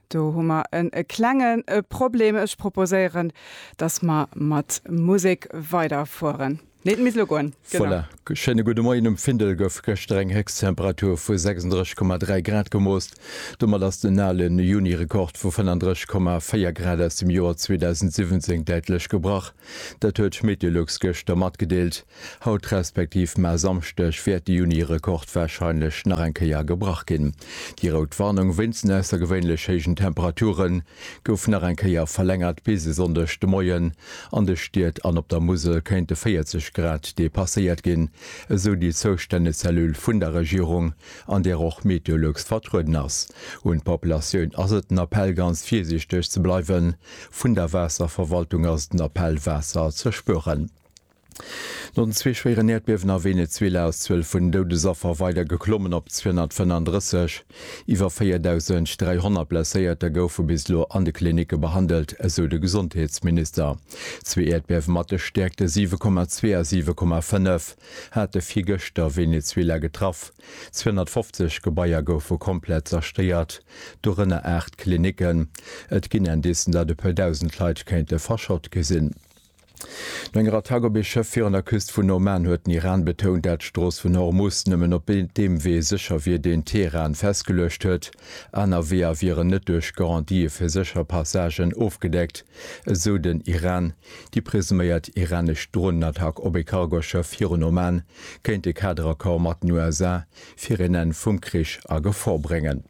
Do hu mer en e klengen e Problem. Ech proposéieren, dass mer mat Musek weiderfueren. Nee, et misst elo goen. Genau. Voilà. G schéine gudde Moien. Um Findel gouf gëschter eng Héchsttemperatur vu 36,3 Grad gemoost. Domat ass den ale Juni-Rekord vu 35,4 Grad aus dem Joer 2017 däitlech gebrach. Dat huet Meteolux gëschter matgedeelt. Haut respektiv mar Samschdeg wäert de Juni-Rekord warscheinlech nach eng Kéier gebrach ginn. Déi rout Warnung wéinst den aussergewéinlech héijen Temperature gouf nach eng Kéier verlängert bis e Sonndeg de Moien. An de Stied an op der Musel kéinte 40 Grad depasséiert ginn, esou déi zoustänneg Cellule vun der Regierung, an där och Meteolux vertrueden ass. Un d'Populatioun ass et den Appell ganz virsiichteg ze bleiwen. Vun der Waasserverwaltung ass et den Appell Waasser ze spueren. No den zwee schwéieren Äerdbiewen a Venezuela ass d'Zuel vun Doudesaffer weider geklommen op 235. Iwwer 4.300 Blesséierter goufe bis elo an de Klinicke behandelt, esou de Gesondheetsminister. Zwee Äerdbiewe mat de Stäerkte 7,2 a 7,5 hate virgëschter Venezuela getraff. 250 Gebaier goufe komplett zerstéiert, dorënner aacht Klinicken. Et ginn Indicen, datt e puer Dausend Leit kéinte verschott gi sinn. No enger Attack op ee Schëff virun der Küst vun Oman huet den Iran betount, dat d'Strooss vun Hormus nëmmen op deem Wee sécher wier, deen Teheran festgeluecht huet. Aner Weeër wieren net duerch Garantië fir sécher Passagen ofgedeckt, esou den Iran. Déi presuméiert iranesch Dronenattack op ee Cargoschëff virun Oman kéint de Kaderaccord mat den USA fir een Enn vum Krich a Gefor bréngen.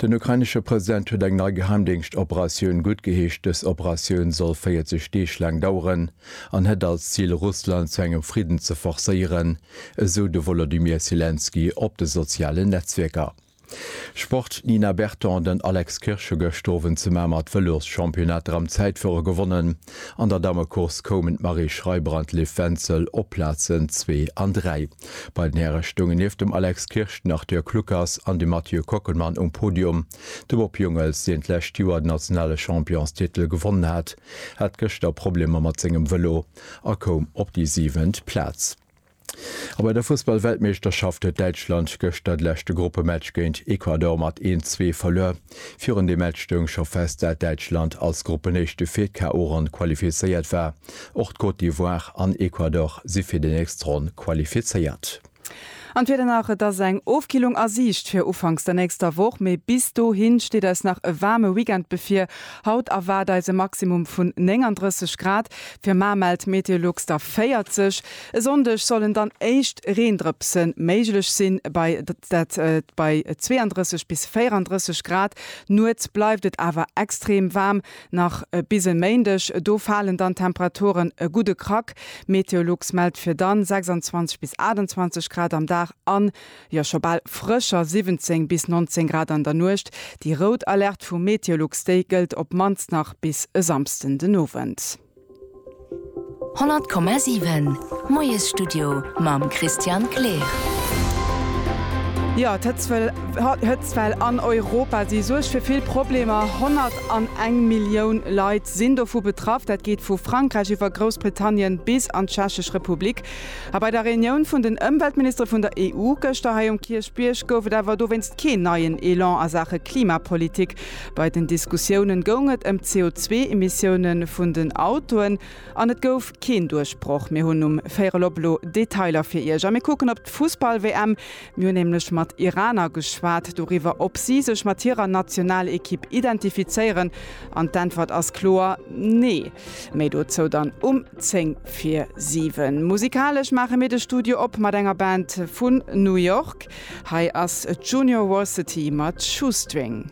Den ukrainesche President huet eng nei Geheimdéngschtoperatioun guttgeheescht. Dës Operatioun soll 40 Deeg laang daueren an hätt als Zil, Russland zu engem Fridden ze forcéieren, esou de Wolodymyr Selenskyj op de sozialen Netzwierker. Sport, D'Nina Berton an den Alex Kirsch hu gëscht Owend zu Mamer d'Vëloschampionnat Dram Zäitfuere gewonnen. An der Dammecourse koumen d'Marie Schreiber an d'Liv Wenzel op d'Plazen zwee an dräi. Bei den Häre stoungen nieft dem Alex Kirsch den Arthur Kluckers an de Mathieu Kockelmann um Podium. De Bob Jungels, deen d'lescht Joer den nationale Championstitel gewonnen hat, hat gëschter Problemer mat sengem Vëlo a koum op déi siwent Plaz. A bei der Fussball-Weltmeeschterschaft huet Däitschland gëschter de leschte Gruppematch géint Ecuador mat 1, 2 verluer. Virun deem Match stoung scho fest, dat Däitschland als Gruppenéischte fir d'KO-Ronn qualifizéiert war. Och d'Côte d'Ivoire an Ecuador si fir déi nächst Ronn qualifizéiert. An d'Wieder nach, Et ass eng Ofkillung a Siicht fir ufanks der nächster Woch, mee bis dohi steet eis nach e waarme Weekend bevir. Haut erwaart eis e Maximum vun 39 Grad, fir mar mellt Meteolux der 40. E Sonndeg sollen dann éischt Reendrëpse méiglech sinn, bei dat bei 32 bis 34 Grad. Nuets bleift et awer extrem waarm, nach bis e Méindeg, do falen dann d'Temperaturen e gudde Krack. Meteolux mellt fir dann 26 bis 28 Grad am Dag an, jo, scho bal frëscher 17 bis 19 Grad an der Nuecht. Déi rout Alerte vu Meteolux, déi gëllt op mannst nach bis e Samsden den Owend. 100,7 Moiesstudio mam Christian Kleer. Jo, d'Hëtzwell an Europa si suergt fir vill Problemer. 101 Millioun Leit sinn dovu betraff. Dat geet vu Frankräich iwwer Groussbritannien bis an d'Tschechesch Republik. A bei der Reunioun vun den Ëmweltministere vun der EU gëschter hei um Kierchbierg gouf et awer dowéinst keen neien Elan a Saache Klimapolitik. Bei den Diskussiounen goung et ëm d'CO2-Emissioune vun den Autoen an et gouf keen Duerchbroch. Mir hunn um Véierelop elo Detailer fir Iech a mir kucken op d'Fussball-WM. Mir hunn nämlech mat Iraner geschwat doriwwer, ob si sech mat hirer Nationalekipp identifizéieren an d'Äntwert ass kloer Nee. Méi dozou dann um 10 vir 7. Musikalesch maache mir de Studio op mat enger Band vun New York. Hei ass d'Junior Varsity mat Shoestring.